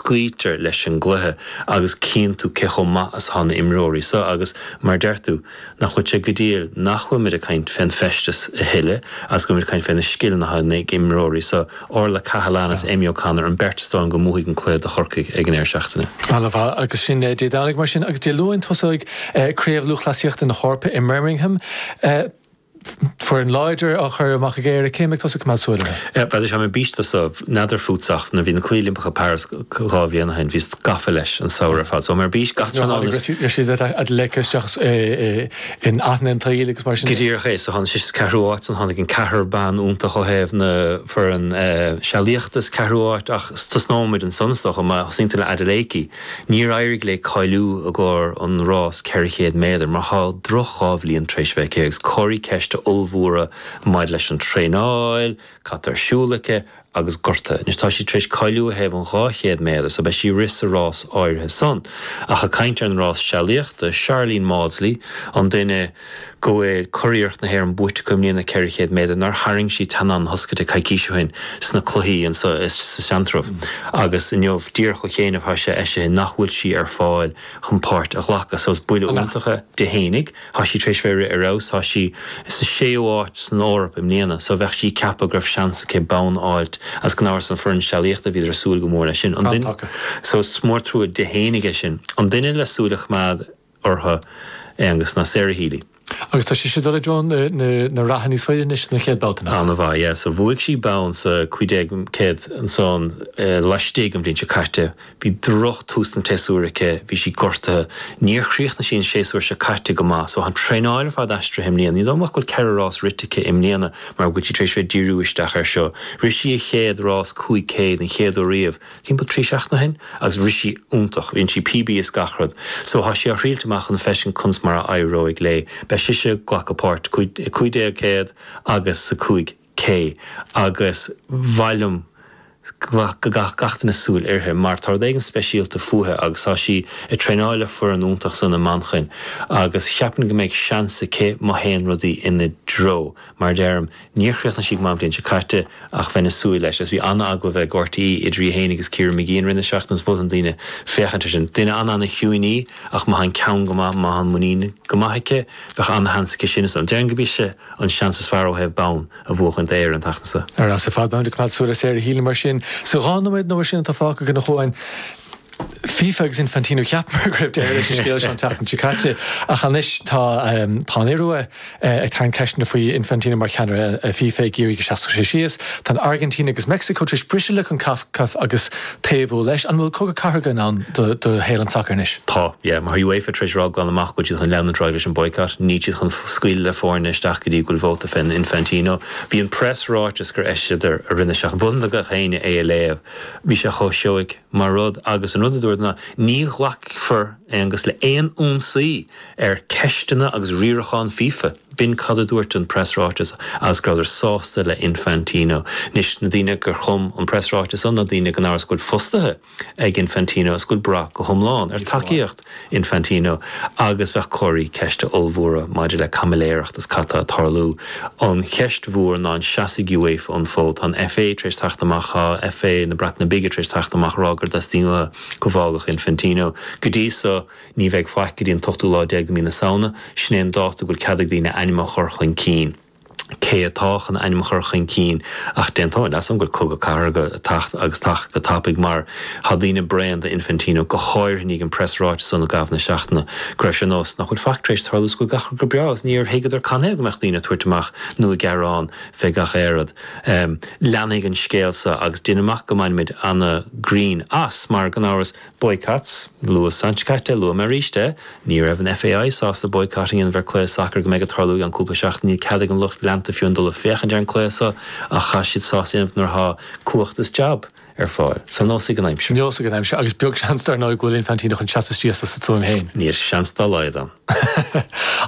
Cloítear leis an gcluiche agus cíonn tú cé chomh maith is atá na himreoirí so agus, mar a deir tú, nach bhfuil sé go diail nach bhfuil muid ag caint fén bhfeisteas a thuilleadh agus go bhfuil muid ag caint fé na scileanna atá ag na himreoirí so, Orlaith Cahalane is Amy O'Connor, an beirt is dóigh go mbuafaidh an cluiche do Chorcaigh ag an deireadh seachtaine. Ana mhaith. Agus sin Dé Domhnaigh mar sin agus Dé Luain tosóidh Craobh Lúthchleasaíochta na hEorpa i mBirmingham. foireann láidir á chur amach ag Éire, cé mbeidh tusa ag coimeád súil orthu? Bheadh sé táim ar bís dó so, n'fheadar fút ach nuair a bhí na Cluichí Oilimpeacha i bPáras dhá bhliain ó shin bhíos gafa leis an samhradh ar fad so táim ar bís gach tráthnóna. Nuair a tháinig Rhasidat Adeleke isteach in aithne an tsaoil agus mar sin de. Go díreach é so tháinig sí sa ceathrú áit san tháinig an ceathrar bean iontach ó thaobh na foireann sealaíochta sa ceathrú áit ach tosnóimid ansan is dócha má thosaíonn tú le Adeleke Níor éirigh léi cáiliú i gcomhair an rás 400 méadar mar tá droch dhá bhliain tar éis bheith aici agus comharthaí ceiste ollmhóra maidir leis an traenáil, cad atá ar siúl aici agus gortuithe. Anois tá sí tar éis cáiliú ó thaobh an 200 méadar so beidh sí ag rith sa rás áirithe san. Ach ag caint ar an rás sealaíochta, Sharlene Mawdsley, an duine, go bhfuil curiarracht na hÉireann buaite aici i mbliana, 400 méadar, nár tharraing sí teannán na hioscaide coicís ó shin sna cluichí in sa Seantrabh agus inniu díreach ó chianaibh thá sé eisithe nach bhfuil sí ar fáil chun páirt a ghlacadh so is buille iontach é di féinig, tá sí tar éis bheith ag rith ar fheabhas, tá sí sa séú háit san Eoraip i mbliana so bheadh sí ag ceapadh go raibh seans aici bonn a fháilt is gan amhras an foireann sealaíochta bhíodar ag súil go mór leis sin. So is mór an trua di féinig é sin. An duine le súil a choimeád uirthi, Aengus ná Sarah Healy. Agus tá sise ag dul i dtreo na reatha níos faide anois sna chéad babhta nach. An-mhaith, yeah. So bhuaigh sí bonn sa 1500 ansan laistigh an bhliain seo caite. Bhí droch tús an tséasúir aici, bhí sí gortaithe. Níor chríochnaigh sí an séasúr seo caite go maith. So tá an traenáil ar fad aistrithe i mbliana. Ní dóigh liom ach go bhfuil ceithre rás rite aici i mbliana mar go bhfuil sí tar éis bheith ag díriú isteach air seo. Rith sí a chéad rás 500, an chéad uair riamh, timpeall trí seachtaine ó shin agus rith sí iontach, dhein sí PB is gach rud. So thá sí á thriailt amach chun feiscint conas mar a éireoidh léi. Beidh sise ag glacadh páirt i 1500 agus sa 5K agus ba mhaith liom go gcaithfeadh gach duine súil uirthi mar tá rud éigin speisialta fúithe agus thá sí ag traenáil le foireann iontach ansan i Manchain agus cheapfainn go mbeidh seans aici má théann rudaí ina dtreo. Mar a deirim, níor chríochnaigh sí go maith an bhliain seo caite, ach bheinn ag súil leis, agus bhí an-agallamh ag RTÉ idir í féin agus Ciara Mageean i rith na seachtaine is mholfainn do dhaoine féachaint air sin. Duine an-an-chiúin í, ach má thá an ceann go maith, má thá an muinín go maith aici, bheadh an-sheans aici sin is dóigh liom. Déarfainn gurb ise an seans is fearr ó thaobh bonn a bhuachan d'Éire an tseachtain seo. Ar fheabhas ar fad, beimid ag coimeád súil ar Sarah Healy mar sin. Sa dhá nóiméad nó mar sin atá fágtha againn a Chuáin, FIFA agus Infantino cheapamar go raibh deireadh leis an scéal seo an tseachtain seo caite, ach anois tá an Iorua ag tarraingt ceisteanna faoi Infantino mar cheannaire FIFA, ag iarraidh go seasfadh sé síos. Tá an Airgintín agus Meicsiceo tar éis briseadh le Concacaf agus taobhú leis. An bhfuil cogadh cathartha i ndán do shaol an tsacair anois? Tá, yeah. Mar tá UEFA tar éis rá glan amach go bhfuil siad chun leanúint ar aghaidh leis an boycott, níl siad chun scaoileadh le foirne isteach go dtí go bhfuil vóta fé Infantino. Bhí an preasráiteas gur eisíodar i rith na seachtaine, gach éinne é a léamh. Bhí sé chomh seoigh mar rud agus an rud a dúradar ná, ní ghlacfar anois le aon ionsaí ar ceisteanna agus riarachán fifa. B'in cad a dúirt an preasráiteas agus go rabhadar sásta le Infantino. Anois, na daoine gur chum an preasráiteas san ná daoine gan amhras go bhfuil fostaithe ag Infantino is go bhfuil brath go hiomlán ar tacaíocht. Infantino agus bheadh comharthaí ceiste ollmhóra maidir le caimiléireacht is cad tá ag tarlú. An cheist mhór ná an seasfaidh UEFA an fód? Tá an FA tar éis teacht amach, tá FA na Breataine Bige tar éis teacht amach ag rá gur dteastaíonn uathu go bhfágfadh Infantino. Go dtí so ní bheidh faic go dtí an t-ochtú lá déag de mí na Samhna, sin é an dáta a bhfuil cead ag daoine a ainm a chur chun cinn. cé atá chun ainm a chur chun cinn ach d'aontóinn leatsa go bhfuil cogadh cathartha ag teacht agus ag teacht go tapaidh mar tá daoine bréan de Infantino go háirithe i ndiaidh an preasráiteas san i gcaitheamh na seachtaine go raibh sé nós nach bhfuil faic tar éis tarlú is go bhfuil gach rud go breá agus níor thuigeadar canathaobh go mbeadh daoine ag tabhairt amach nó ag gearán fé gach aon rud. Leanfaidh an scéal so agus déan amach go mbainfimid ana grinn as mar gan amhras Boycott, luas an tseachtain seo caite, luaim arís é. Ní raibh an FAI sásta boycott a dhéanamh ar chluiche sacair go mbeidh ag tarlú i gceann cúpla seachtain. Níl cead ag an lucht leanta fiú amháin dul ag féachaint ar an cluiche so ach tá siad sásta é a dhéanamh nuair atá cumhacht is jab ar fáil. So neosfaidh an aimsir. Neosfaidh an aimsir agus beag seans dar ndóigh go bhfuil Infantino chun seasamh síos as a stuaim féin. Níl seans dá laghad ann.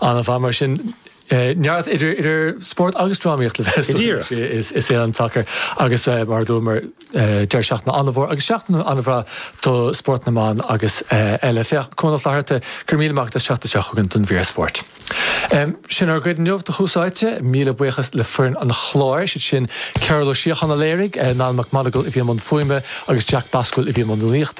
An-mhaith mar sin. Neart idir spórt agus drámaíocht le bheith i saol an tsacair agus, mar a dúramar, deireadh seachtaine an-mhór agus seachtain an-bhreá do spórt na mban agus eile. Féach Cuán Ó Flatharta, go raibh míle maith agat, an tseachtain seo chugainn don mhír spóirt. Sin ár gcuid inniu do Tús Áite. Míle buíochas le foireann an chláir, is iad sin Cearbhall Ó Síocháin a léirigh, Niall Mac Monagail a bhí i mbun fuaime agus Jack Boswell a bhí i mbun rúnaíochta.